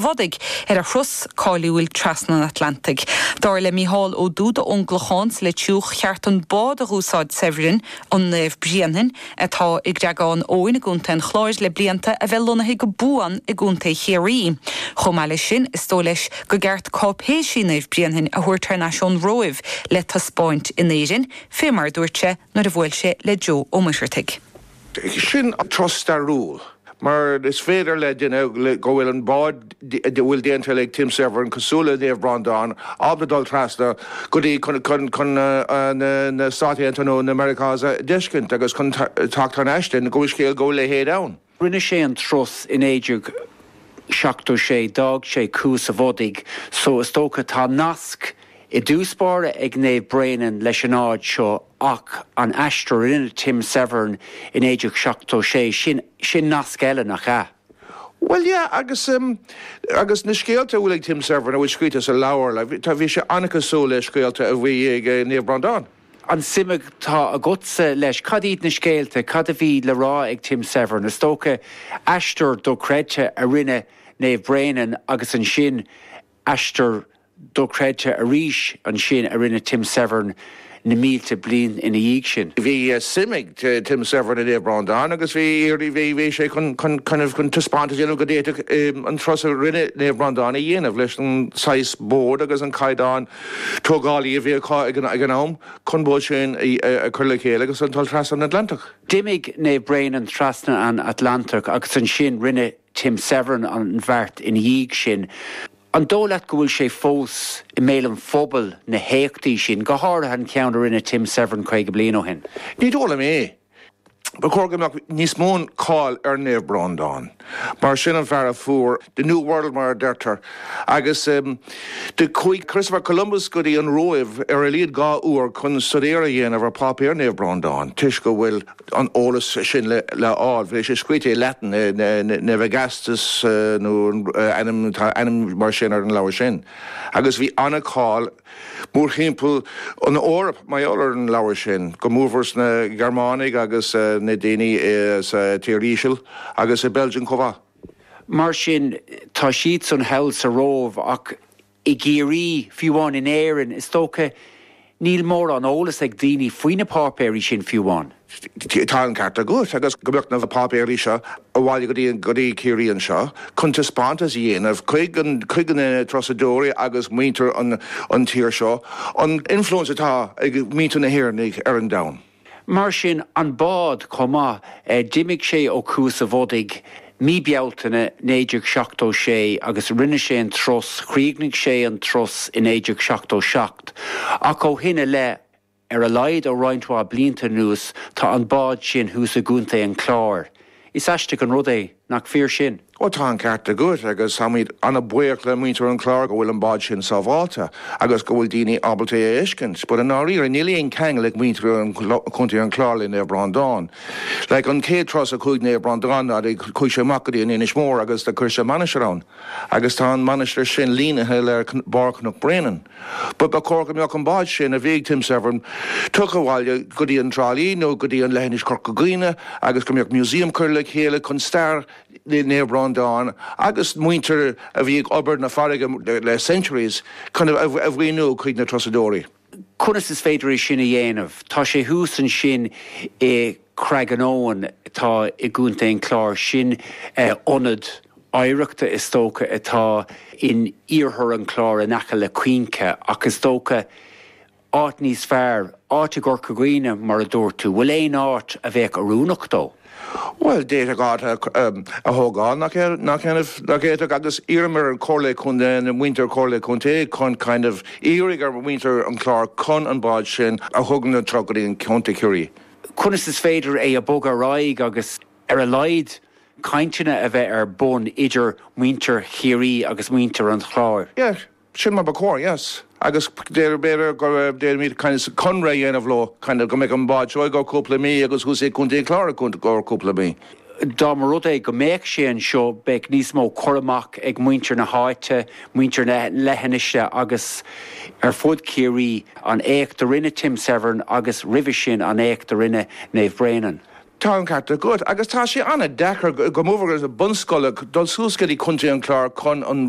Bhodaigh, ar a thuras cáiliúil trasna an Atlantaigh. Dar le Mícheál Ó Dúda ón gClochán sa Leitriúch, ceart an bád a dh'úsáid Severin, an Naomh Bréanainn, atá i gCreagán Eoin i gContae an Chláir le blianta, a bheith lonnaithe go buan i gContae Chiarraí. Chomh maith leis sin, is dóigh leis go gceart cáipéisí Naomh Bréanainn a thabhairt thar n-ais ón Róimh le taispeáint in Éirinn, fé mar a dúirt sé nuair a bhuail sé le Joe Ó Muircheartaigh. sin turas stairiúil, mar is féidir le duine go bhfuil an bád a bhfuil déanta ag Tim Severin cosúil le Naomh Bhreandán ábalta dul trasna go dtí chun na Stát Aontaithe nó na Meiriceá a d'fheiscint agus chun teacht thar n-ais go bhfuil scéal go bhfuil leithéid ann. Rinne sé an turas i 1976, d'fhág sé Cuas an Bhodaigh, so is dócha tá nasc i dtús báire ag Naomh Bréanainn leis an áit seo ach an aistear a rinne Tim Severin i 1976, sin, sin nasc eile, nach ea? Bhuel, yeah, agus, agus na scéalta a bhfuil ag Tim Severin, a bhfuil scríte sa leabhar, like, tá, bhí sé an-chosúil le scéalta a bhí ag Naomh Breandán. An suim atá agatsa leis, cad iad na scéalta, cad a bhí le rá ag Tim Severin, is dócha aistear dochreidte a rinne Naomh Bréanainn agus ansin aistear dochreidte arís ansin a rinne Tim Severin na mílte bliain ina dhiaidh sin. Bhí suim ag Tim Severin i Naomh Bhreandáin agus bhí sé chun taispeáint a dhéanamh go bhféadfadh an turas a rinne Naomh Bhreandáin a dhéanamh leis an saghas bád agus an caighdeán tógálaí a bhí acu ag an am chun bád sin a chur le chéile agus an dul trasna an Atlantach. D'imigh Naomh Bréanainn trasna an Atlantach agus ansin rinne Tim Severin an bheart ina dhiaidh sin. An dóigh leat go bhfuil sé fós i mbéal an phobail, na héachtaí sin, go háirithe an ceann a rinne Tim Severin caoga bliain ó shin? Ní dóigh liom é. Ba chóir go mbeadh níos mó cáil ar Naomh Breandán, mar sin an fear a fuair the new world mar a deirtear, agus do chuaigh Christopher Columbus go dtí an Róimh ar a laghad dhá uair chun staidéar a dhéanamh ar pháipéir Naomh Breandán toisc go bhfuil an t-eolas sin le fháil. Bheadh sé scríte i Latin, Navigatio nó ainm, tá ainm mar sin ar an leabhar sin. Agus bhí an-cháil mórthimpeall an Eoraip mar gheall ar an leabhar sin, go mór-mhór sna Gearmánaigh agus na daoine sa tír íseal agus i Belgium chomh mhaith. Mar sin, tá siadsan thall sa Róimh ach I gCiarraí, fiú amháin in Éirinn, is dócha, níl mórán eolas ag daoine faoi na páipéirí sin fiú amháin. Tá an ceart agat, agus go mbeadh na páipéirí seo abhaile go dtí Ciarraí anseo chun taispeántas a dhéanamh chuig na turasóirí agus muintir an tír seo an influence atá ag muintir na hÉireannaigh ar an domhan. Mar sin an bád chomh maith. D'imigh sé ó Chuas a' Bhodaigh mí Bealtaine 1976 agus rinne sé an turas, chríochnaigh sé an turas i 1977 ach ó shin i leith, ar a laghad ó roinnt mhaith blianta anuas, tá an bád sin thuas i gContae an Chláir. Is aisteach an rud é nach fíor sin. Ó tá an ceart agat agus táimid an-bhuíoch le muintir an Chláir go bhfuil an bád sin sábháilte agus go bhfuil daoine ábalta é a fheiscint, but i ndáiríre níl aon ceangal ag muintir Chontae an Chláir le Naomh Breandán. Like an chéad turas a chuaigh Naomh Breandán ná do chuaigh sé amach go dtí an Inis Mór agus do chuir sé mainistir ann agus tá an mainistir sin línithe le barr Chnoc Bréanainn. Ba chóir go mbeadh an bád sin a bhí ag Tim Severn tugtha abhaile go dtí an Trá Lí nó go dtí an leithinis Chorca Dhuibhne agus go mbeadh museum curtha le chéile chun stair Naomh Breandán agus muintir a bhí ag obair na farraige le centuries chun a mhíniú chuig na turasóirí. Conas is féidir é sin a dhéanamh? Tá sé thuas ansin i. Creagán Eoghain, atá i gContae an Chláir, sin ionad oidhreachta, is dócha, atá in iarthar an Chláir in aice le Cuinche, ach is dócha áit níos fearr, áit i gCorca Dhuibhne, mar a dúirt tú. Bhfuil aon áit a bheadh oiriúnach dó? Bhuel, d'fhéadfadh áit a thógáil, nach bhféadfadh? Agus iarraim ar an Chomhairle Contae, ar mhuintir Chomhairle Contae chun kind of iarraidh ar mhuintir an Chláir chun an bád sin a thugaint arís go dtí an Contae Chiarraí, conas is féidir é a bhogadh ar aghaidh agus ar a laghad cainteanna a bheith ar bun idir muintir Chiarraí agus muintir an Chláir. Yeah, sin mar ba chóir, yes. Agus b'fhéidir go dtéimid kind of conradh a dhéanamh leo, kind of go mbeadh an bád anseo i gcomhair cúpla mí agus thuas i gContae an Chláir i gcomhair cúpla mí. Dá mba rud é go mbeadh sé anseo, bheadh níos mó cur amach ag muintir na háite, muintir na leithinise agus ar fud Chiarraí, an éacht a rinne Tim Severn agus roimhe sin an éacht a rinne Naomh Bréanainn. Tá an ceart agat agus tá sé an-deacair go mór-mhór ag bunscoil dul suas go dtí contae an Chláir chun an.